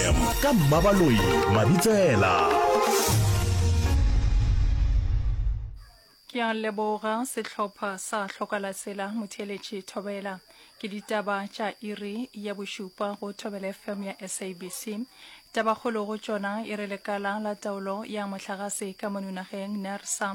fm ka mmabaloi mabitsela ke a leboga sehlopha sa hlokala sela motheeletši thobela ke ditaba tša iri ya bošupa go thobela fm ya sabc tabakgolo go tšona e re lekala la taolo ya mohlagase ka monunageng nersa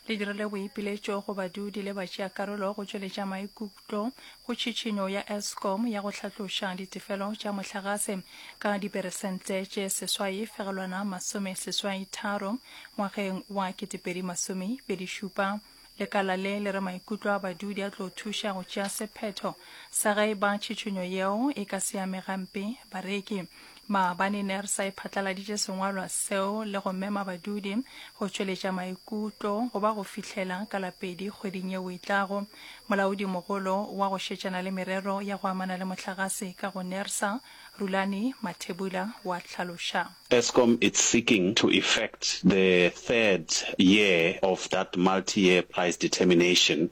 le dirile boipiletšo go badudi le batšeakarolo go tšweletša maikutlo tlo go tšhitšhinyo ya Eskom ya go hlatloša ditefelo tša mohlagase ka diperesente tše seswai fegelwana masome seswai tharo ngwageng wa 2027. Lekala le le re maikutlo a badudi a tlo thuša go tšea sephetho sa ge e ba tšhitšhinyo yeo e ka se ame gampe bareki. Maabane ne re sa e phatlaladitše sengwalwa seo le go mema badudi go tšweletša maikutlo go ba go fihlela ka la pedi kgweding yeo e tlago. Molaodi mogolo wa go šetšana le merero ya go amana le mohlagase ka go Nersa, Rulani Mathebula wa hlaloša. Eskom it's seeking to effect the third year of that multi-year price determination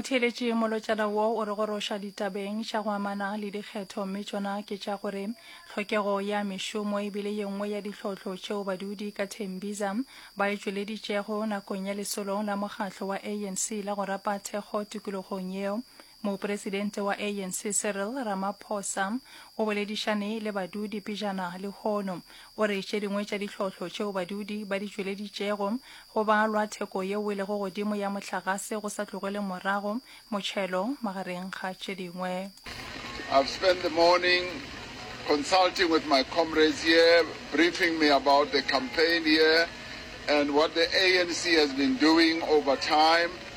motheeletše molotšana wo o re goroša ditabeng tša go amana le dikgetho mme tšona ke tša gore tlhokego ya mešomo e bile ye nngwe ya ditlhohlo tšeo badudi ka thembiza ba e tšweleditšego nakong ya lesolong la mokgatlo wa anc la go rapa thekgo tikologong yeo Mopresidente wa ANC Cyril Ramaphosa o boledišane le badudi pejana lehono. O re tše dingwe tša dihlohlo tšeo badudi ba di tšweleditšego go balwa theko yeo e lego godimo ya mohlagase go sa tlogele morago motšhelo magareng ga tše dingwe. I've spent the morning consulting with my comrades here, briefing me about the campaign here and what the ANC has been doing over time.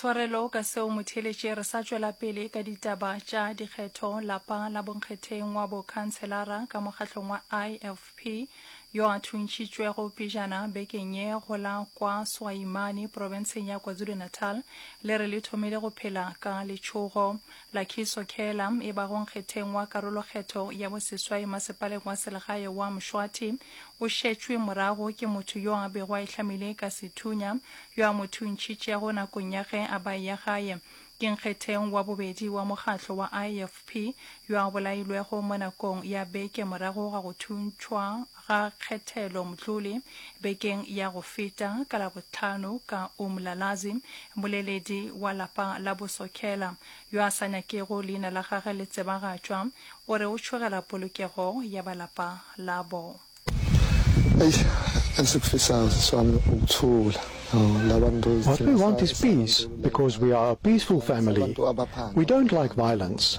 tshwarelo ka seo motheletše re sa tšwela pele ka ditaba tša dikgetho lapa la bonkgetheng wa bokhanselara ka mokgahlong wa ifp yo a thuntšhitšwego pejana bekeng ye go la kwa swaimane profenseng ya kwazulu-natal le re le thomile go phela ka letšhogo Lakhiso Khela, e bago nkgetheng wa karolokgetho ya boseswai masepaleng wa selegae wa Mshwathi, o šetšwe morago ke motho yo a bego a ihlamile ka sethunya, yo a mo thuntšhitšego nakong ya ge a ba ya gae. Ke nkgetheng wa bobedi wa mokgatlo wa IFP yo a bolailwego mo nakong ya beke morago ga go thuntšhwa ga Khethelo Mtlole bekeng ya go feta ka Labohlano ka Umlalazi, moleledi wa lapa la bo Sokhela, yo a sa nyakego leina la gage le tsebagatšwa, o re o tšhogela polokego ya ba lapa labo. What we want is peace because we are a peaceful family. We don't like violence.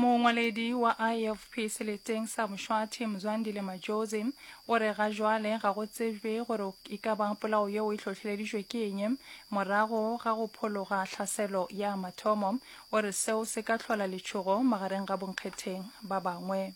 Mongwaledi wa IFP seleteng sa Mshwathi, Mzwandile Majozi, o re ga jwale ga go tsebjwe gore e ka ba polao yeo e hlohleleditšwe ke eng. Morago ga go phologa tlhaselo ya mathomo, o re seo se ka hlola letšhogo magareng ga bonkgetheng ba bangwe.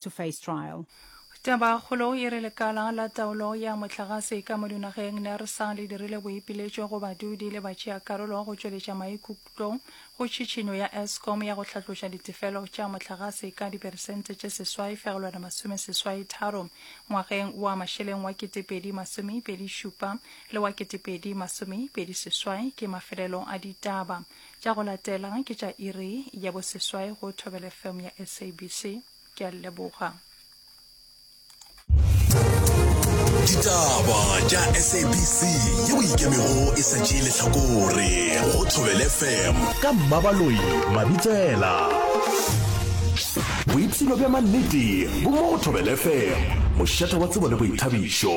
to face trial. Tabakgolo e re lekala la taolo ya motlagase ka mo dinageng NERSA le dirile boipiletšo go badudi le batšeakarolo go tšweletša maikutlo go tšhitšhinyo ya Eskom ya go hlatloša ditefelo tša motlagase ka diperesente tše seswai fegelwana masome seswai tharo ngwageng wa mašeleng wa ketepedi masomepedi šupa le wa ketepedi masomepedi seswai ke mafelelo a ditaba Tša go latela ke tša iri ya boseswai go Thobela FM ya SABC. Ke a leboga. ditaba tša sabc yeo e ikemego e sa tšee lehlakore go thobele fm ka mmabaloi mabitsela boipshino bja mannete bo mo go thobele fm mošata wa tsebo le boithabišo